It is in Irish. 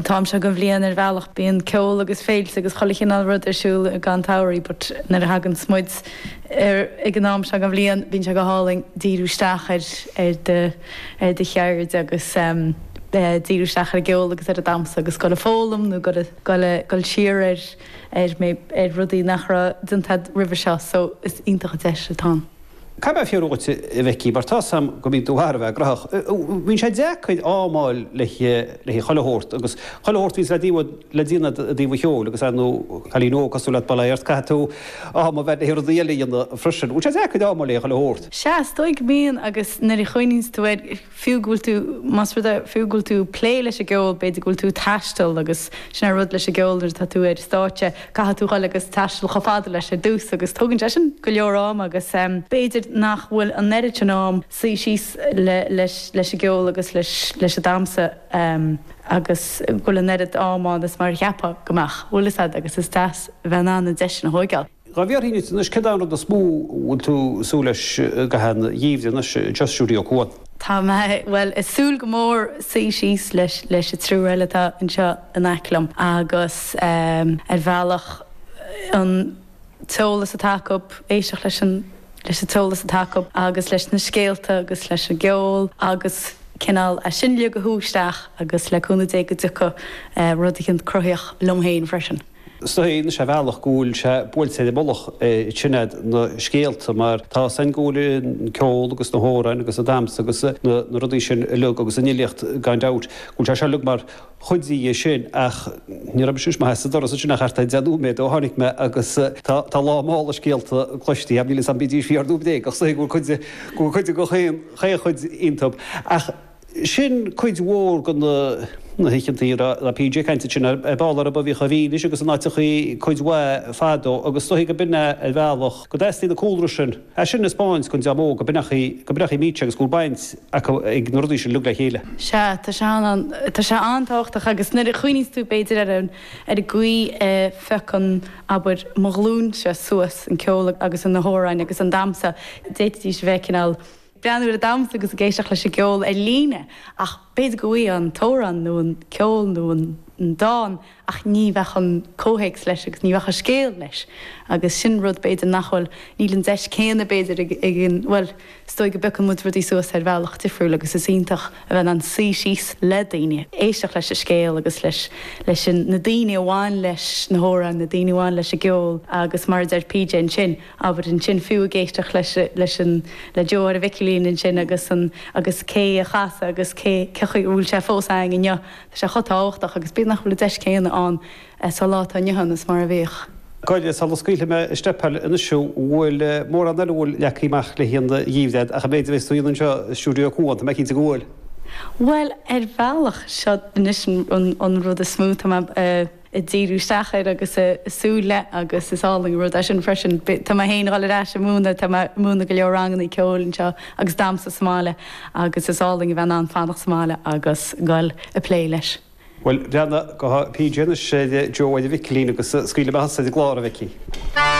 t-am seo den bhliain ar bhealach bíonn ceol agus féilte agus chuile chineál rud ar siúl i gcaitheamh an tsamhraidh but nuair a thaganns muid ar ag an am seo den bhliain bíonn sé go hálainn díriú isteach ar ar do ar do cheird agus díriú isteach ar an gceol agus ar an damhsa agus dul ag foghlaim nó dul dul dul siar ar ar ar rudaí nach raibh déanta agat roimhe seo so is iontach an deis atá ann. Caithfidh mé fiafraí dhíot, a Bhecky, mar tá 's a'm go mbíonn tú thar a bheith graitheach. Bíonn sé deacair am a fháil le chuile shórt, agus chuile shórt a bhíonns le déanamh i dtaobh an cheoil agus ar ndóigh cailín óg cosúil leat, bail ort, caithfidh tú am a bheith le rudaí eile a dhéanamh freisin. Bhfuil sé deacair am a fháil le chuile shórt? Sea, is dóigh go mbíonn agus nuair a chuimhníonns tú air, fiú go bhfuil tú, más rud é, fiú go bhfuil tú ag plé leis an gceol, b'fhéidir go bhfuil tú ag taisteal agus sin é an rud leis an gceol nuair atá tú ar stáitse caithfidh tú dhul agus taisteal chomh fada leis ar dtús agus tógann sé sin go leor am agus b'fhéidir nach bhfuil an oiread sin am suí síos le, leis, leis an gceol agus leis, leis an damhsa agus go bhfuil an oiread am ann is mar a cheapfá go mbeadh. Bhfuil a fhios agat agus is deas a bheith in ann an deis sin a thóigeáil. Dhá bhfiafróinn díot anois céard é an rud is mó a bhfuil tú ag súil leis i gcaitheamh an gheimhridh anois i Stiúideo Cuan. Tá mé, bhuel, ag súil go mór suí síos leis an triúr eile atá anseo in aice liom agus ar bhealach an t-eolas atá acu, éisteacht leis an t-eolas atá acu agus leis na scéalta agus leis an gceol agus cineál é sin uilig a shú isteach agus le cúnamh Dé go dtiocfaidh rud eicínt cruthaitheach liom féin freisin. Is dóigh liomsa ar bhealach go bhfuil sé buailte ar an mullach sin iad na scéalta mar tá 's a'inn go bhfuil an ceol agus na hamhráin agus an damhsa agus na rudaí sin uilig agus an fhilíocht gan dabht go bhfuil sé seo uilig mar chuid de sin ach ní raibh mise mé sa doras ansin ach thart ar deich nóiméad ó tháinig mé agus tá lán mála scéalta cloiste ach níl fhios agam bídís fíor nó bréagach is dóigh go bhfuil cuid go bhfuil cuid de chaon chuid iontub ach Sin cuid mhór de na na hoícheantaí a raibh PJ ag caint ansin ar ball arb amhlaidh a bhídís agus in áiteachaí cuid mhaith fadó agus is dóigh go mbíonn ar bhealach go dteastaíonn an cúlra sin. As sin a spáint go ndeá mó go mbeadh go mbeadh Mícse agus go bhfuil baint acu ag na rudaí sin uilig le chéile. Sea, tá sé an tá sé an-tábhachtach agus nuair a chuimhníos tú b'fhéidir ar an ar an gcaoi a phiocann, abair, mo ghlúinse suas an ceol agus an na hamhráin agus an damhsa, d'fhéadfaidís a bheith cineál, breathnú ar an damhsa agus ag éisteacht leis an gceol ar líne ach b'fhéidir go bhfaighfí an t-amhrán nó an ceol nó an dán ach ní bheadh an comhthéacs leis agus ní bheadh an scéal leis agus sin rud b'fhéidir nach bhfuil, níl an deis céanna b'fhéidir ag, bhuel is dóigh go bpiocann muid rudaí suas ar bhealach difriúil agus is iontach a bheith in ann suí síos le daoine, éisteacht leis an scéal agus leis, leis an, na daoine a bhain leis na hamhráin, na daoine a bhain leis an gceol agus mar a deir PJ ansin, Abair ansin fiú ag éisteacht leis leis an le Joe ar an Mhicilín ansin agus a agus cé a chasadh agus cé cé chaoi a bhfuil sé fós a'ainn inniu. Tá sé chomh tábhachtach agus bíodh nach bhfuil an deis céanna ann sa lá atá inniu ann is mar a bhíodh. Go díreach sula scaoilfidh mé isteach Pádraig anois fiú bhfuil mórán eile a bhfuil leagtha amach le haghaidh an gheimhridh ach an méid a bheas tú a dhéanamh anseo i stiúideo Cuán, tá mé cinnte go bhfuil. Bhuel ar bhealach seo anois an an rud is mó tá mé a ag díriú isteach air agus ag súil leis agus is álainn an rud é sin freisin. Tá mé féin ag dul ar ais ag múineadh, tá mé ag múineadh go leor ranganna ceoil anseo agus damhsa sa mbaile agus is álainn a bheith in ann fanacht sa mbaile agus dul ag plé leis. Bhuel, breathnaigh go PJ anois, a Joe, a Mhicilín, agus scaoil amach an saol i gclár, a Mhicí.